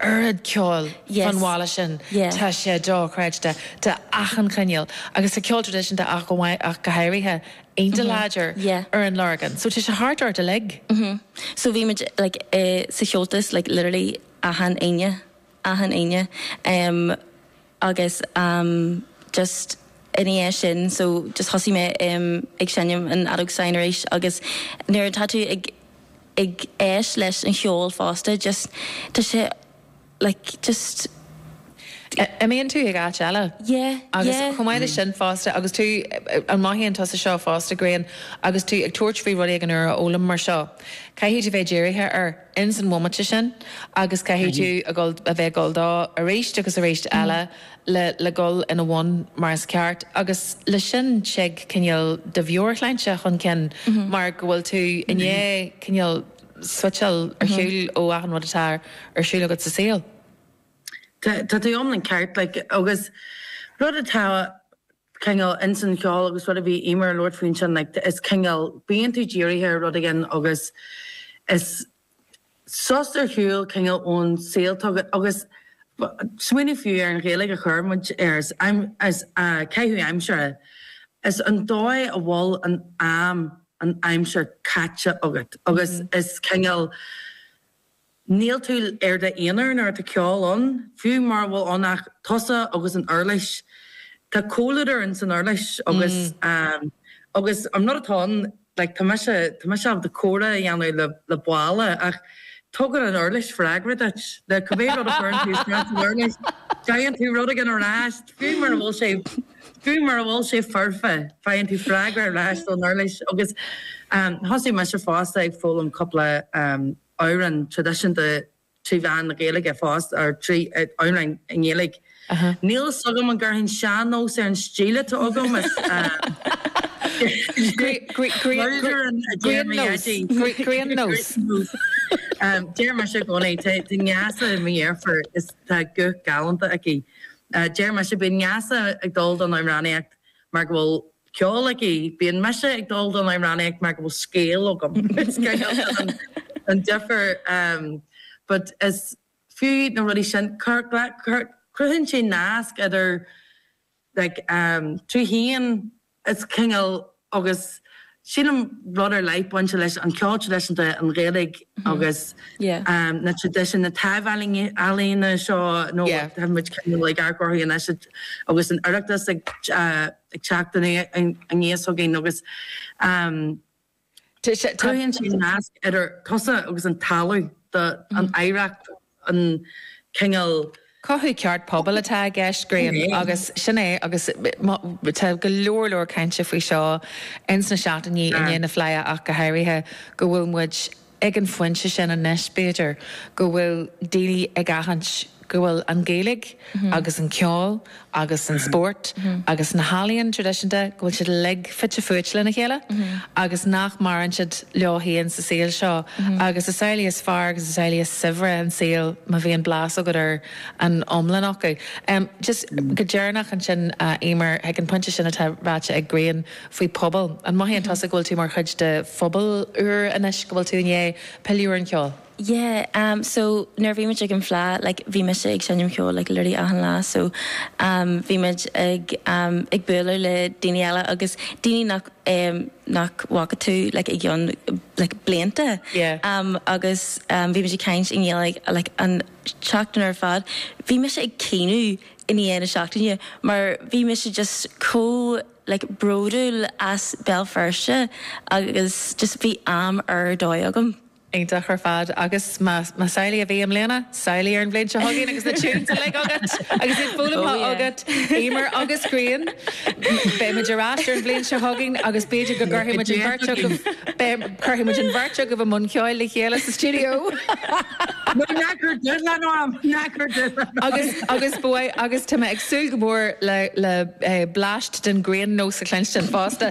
oiread ceoil fán bhaile sin, tá sé dochreidte, de achan chineál agus tá ceol traidisiúnta ach go háirithe, iontach láidir ar an Lorgain. So tá sé thart ort uilig. So bhí muid like sa Chomhaltas like literally achan Aoine, achan Aoine. agus ehm just ina dhiaidh sin so just thosaigh mé ehm ag seinm an fheadóg stáin arís agus nuair atá tú ag ag éist leis an cheol fosta just tá sé like just Eh imíonn tú ag áit eile yeah agus yeah chomh maith leis sin fosta agus tú an mothaíonn tusa seo fosta Grian agus tú ag tabhairt faoi rud éigin úr a fhoghlaim mar seo caithfidh tú bheith dírithe ar ins an bhomaite sin agus caithfidh tú a dhul, a bheith ag dul dó aríst agus aríst eile le, le dhul ina bhun mar is ceart agus le sin tig cineál de mheabhairshláinte chun cinn mar go bhfuil tú i ndiaidh cineál suiteáil ar shiúl ó achan rud atá ar siúl agat sa saol. Tá, tá tú iomlán ceart like agus rud atá cineál ins an cheol agus rud a bhí Emer a' labhairt faoi ansin like is cineál bíonn tú dírithe ar rud éigin agus is sos ar shiúl cineál ón saol atá agat agus smaoineamh fiú ar an Ghaeilge a chuir muid air is am is caitheamh aimsire is an dóigh a bhfuil an am an aimsir caite agat agus is cineál Níl tú ar d'aonar nuair atá ceol ann, fiú mura bhfuil ann ach tusa agus an uirlis. Tá comhluadar in san uirlis agus agus an rud atá ann like tá mise tá mise ábalta comhrá a dhéanamh le le balla ach tugann an uirlis freagra duit. Le cibé rud a chuireann tú isteach san uirlis, faigheann tú rud éigin ar ais, fiú mura bhfuil sé fiú mura bhfuil sé foirfe, faigheann tú freagra ar ais ón uirlis agus thosaigh mise fosta ag foghlaim cúpla amhráin traidisiúnta trí mheán na Gaeilge fosta, trí amhráin i nGaeilge. Níl fhios agam an gcuirfinn sean-nós ar an stíl atá agam, is mar a deir mo dhaidí. Grian nós. Deir mise i gcónaí, tá Neasa, mo dheirfiúr, is tá guth galánta aici, deir mise bíonn Neasa ag dul don amhránaíocht mar go bhfuil ceol aici. Bíonn mise ag dul don amhránaíocht mar go bhfuil scéal agam. Is cineál sin an difear but is fiú na rudaí sin, cruthaíonn sé nasc idir like tú féin is cineál agus sílim rud ar leith bainte leis an ceol traidisiúnta, an Ghaeilge agus na traidisiúin, na taibh-ealaíona seo nó tá muid cineál ag athchóiriú anois agus an Oireachtas ag. ag teacht aníos againn agus cruthaíonn sé nasc idir tusa agus an talamh, an oidhreacht, an cineál. Cothú ceart pobail atá i gceist, Graham, agus sin é agus tá go leor leor cainte faoi seo ins na seachtainí i ndiaidh na Fleidhe ach go háirithe, go bhfuil muid, Ag an phointe sin anois, b'fhéidir, go bhfuil daoine ag aithint go bhfuil an Ghaeilge agus an ceol agus an spórt agus na healaíon traidisiúnta, go bhfuil siad uilig fite fuaite lena chéile agus nach maireann siad leo féin sa saol seo. Agus is amhlaidh is fearr agus is amhlaidh is saibhre an saol má bhíonn blas agat ar an iomlán acu. Just go deireanach ansin, Emer, ag an phointe sin atá ráite ag Grian, faoi pobal. An mothaíonn tusa go bhfuil tú mar chuid de phobal úr anois, go bhfuil tú i ndiaidh pilleadh ar an cheol? Yeah, em so nuair a bhí muid ag an Fhleadh like bhí mise ag seinm ceoil like literally achan lá so em bhí muid ag em ag bualadh le daoine eile agus daoine nach em nach bhfaca tú like i gcionn like blianta Yeah. em agus em bhí muid ag caint i nGaeilge like an tseachtain ar fad. Bhí mise ag caoineadh i ndiaidh na seachtaine mar bhí mise just chomh like bródúil as Béal Feirste agus just bhí am ar dóigh agam. Iontach ar fad agus más más amhlaidh a bhí i mbliana, samhlaigh ar an bhliain seo chugainn agus na tunes uilig agat agus iad foghlamtha agat, Emer agus Grian. Beidh muid ar ais ar an bhliain seo chugainn agus b'fhéidir go gcuirfidh muid an bheirt agaibh, beidh, cuirfidh muid an bheirt agaibh i mbun ceoil le chéile sa stiúideo! Nó ná cuir dúil ann orm, ná cuir dúil ann! Agus bhuel, agus tá mé ag súil go mór le, le, eh, bleaist den Grian nós a chluinstin fosta.